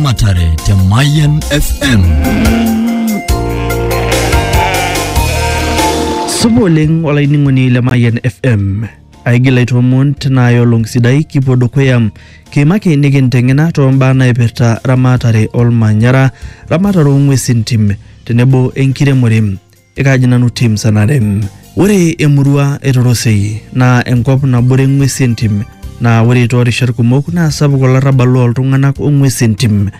Matare te Mayan FM. Supa oleng olainining'oni le Mayan FM. Aigil aitoomon tina olong sidai kipuo dukuya kiimaki nikinteng'ena too mbaa naipirta ramatare olmanyara, ramatare oo ng'uesin tim tenebo enkiremore. Ekaaji nanu tim sanarem. Ore emurua e Torosei naa enkop nabore ng'wesi entim naa ore toorishat kumok naa sapuk olarrabal loo ltung'anak o ng'wesi entim.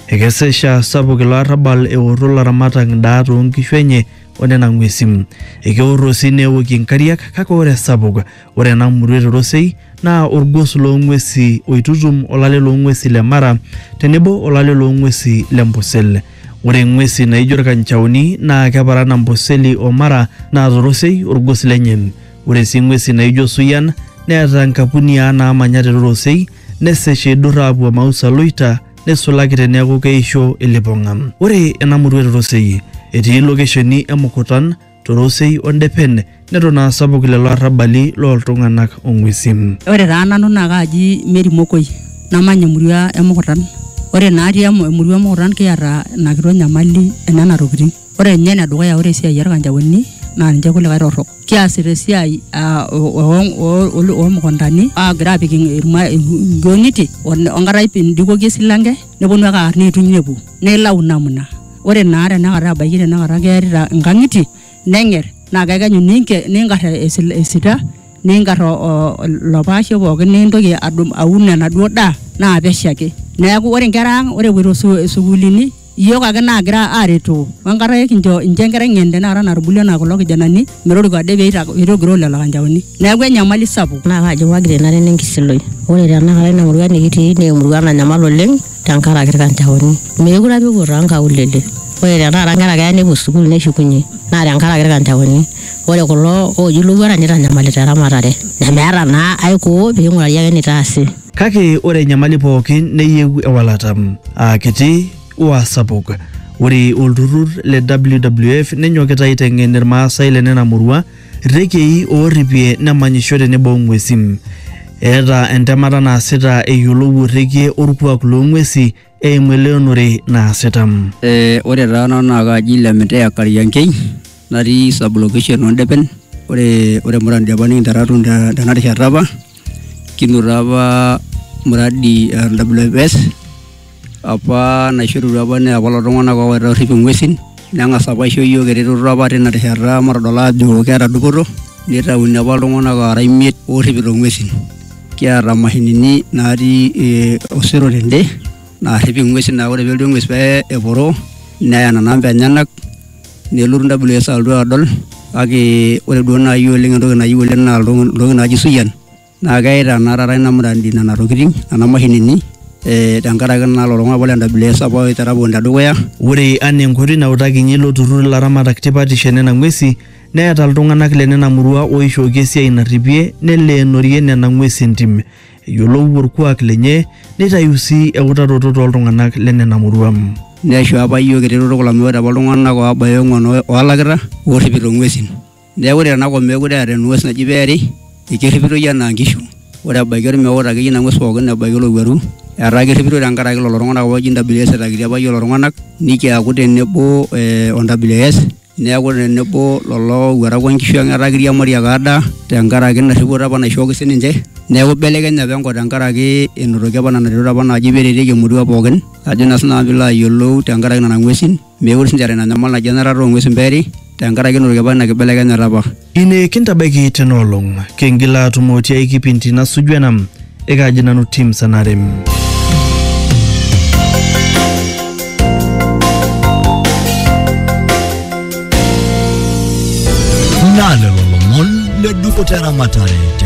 Ekesesha sapuk ilo arrabal eorro laramatak ndaa too nkishu enye o nena ng'wesi. Ekeorro sii neokie nkariak kake ore esapuk ore ena murua e Torosei naa olgos loo ng'wesi oitutum olale loo ng'wesi le Mara tenebo olale loo ng'wesi le Ambosel. Ore ng'wesi naijo ilkanchaoni naa keparan Amboseli o Mara naa torosei olgos lenye. Ore sii ng'wesi naijo suyian neeta nkapuniaa naamanya te torosei nesesh eidur aapuo Mausa Loita neisulaki teneaku keisho ilipong'a. Ore ena murua e torosei etii lokesheni e Mukutan torosei o ndepen neton aa sapuk lelo arrabali looltung'anak o ng'uesin. Ore taa nanu naa kaaji Mary Mokoi namanya emurua e Mukutan. Ore naati emurua e Mukutan kiata ina kitok nyamali e nena tokitin. Ore ninye ene dukuya ore esiai olkanjaoni naa ninche kulikae torrok. Kiasita esiai aa oo mukuntani aagira aapik inkiong'itie o nkata pee indikoki esilanke nepwonu ake aar neituny nepwo nilau namna ore naa tenakata ebaiki tenakata kearita inkang'itie neng'er naa kekenyu ninke niingar esil esita niingar o o ilo paashe pookin niintoki adum aun enaduo daa naa pesho ake. Neaku ore nkera ang' ore epuoito su sukuulini iyiok ake naagira aaretoo oenkata ekincho incho enkerai ng'en tenakata natubulua anaa kulo kijanani metoriko ade peita peitogiroo lelo kanjaoni. Neaku enyamali sapuk. Naa kaji paa keikenare enkishui? Ore tenakata ina murua nikitii naa emurua nanyamal oleng'. tenkaraki irkanjaoni meekure apa epuo toonkaulele ore tenakata inkera keya nepuo sukuul neshukunye naa tenkaraki irkanjaoni ore kulo ooji ilowuarak nitanyamalita eramatare nemeeta naa ae koo ping'urari ake enitaasi. Kake ore enyamali pooki neyieu ewalata, aa kiti o aa sapuk. Ore olturrur le WWF nenyokita aiteng'en Ilmaasai le nena murua Irekei oorripie nemanyisho tenebo o ng'uesi. Eeta entemata naasita eyiolou orrekie orkuak loo ng'uesi eimu eleonore naasita. Eh, ore taa nanu naa kaaji Lemeteya Kariankei natii sub-location oo Ndepen. Ore, ore Murang'a Ndepen nikinterra atum tena rishata apa. kinoto apa mradi e WFS apa naishorutua apa naa kulo tung'anak oowaita orrip ing'uesin neng'as apa aisho iyiook eretoto apa tina rishata matodol aajo keeta dupoto nitauni apa iltung'anak oora imiet oorripito ing'uesin kiata imashinini naatii ee osero tende naarrip ing'uesin naa ore pee elotu eng'ues pee eporo neya nena amba enyenak. nelotu WS alotu adol kake ore duo naaji oleng entoki nayieu oleng naa ntokitin naaji suyian naa keita naa taata ina muradi nena tokitin nena mashinini eh tenkaraki naa lelo tung'anak apa le WS apa oitera pookin tedukuya. Ore anaa enkoitoi nautakinye ilo turrur ilaramatak tipatisho e nena ng'uesi neeta iltung'anak le nena murua ooishooki esiai narripie neleenori nena ng'uesi entim. eyiolou orkuak lenye neitayu sii eutaroto tooltung'anak lenena murua. Neisho apa iyiook eretoto kulo amu ore apa iltung'anak oobaya ong'uan oolakita oorripito ng'uesin. Neeku ore tenakop meekure eeta eng'ues naji peeri ekerripitoi enaa nkishu. Ore ebaiki olmeut akeyie ina ng'ues pooki ebaiki olowuaru etaa kerripitoi tenkaraki lelo tung'anak apa ooji NWS etakitia apa iyiook lelo tung'anak nikiaku tenebo o NWS neaku tenebo lolo owuarak onkishu ang etaa kiriamari ake adaa tenkaraki ina rripoto apa naishooki sininche neeku ibelekenye apa enkop tenkaraki enotoki apa nena retot apa naaji peretieki emurua pookin ajo naa sinanu piilo ayiolou tenkaraki nana ng'uesin mekure sinche eeta ina nyamal naji enarata ong'uesin peeri tenkaraki enotoki apa ina kibelekenyata apa. Ine kintabaiki tena olong. Kingil aatumo tiai kipindi nasuju ena. Ekaaji nanu Tim Sanarem. Naa lelo lomon le dupoto eramatare te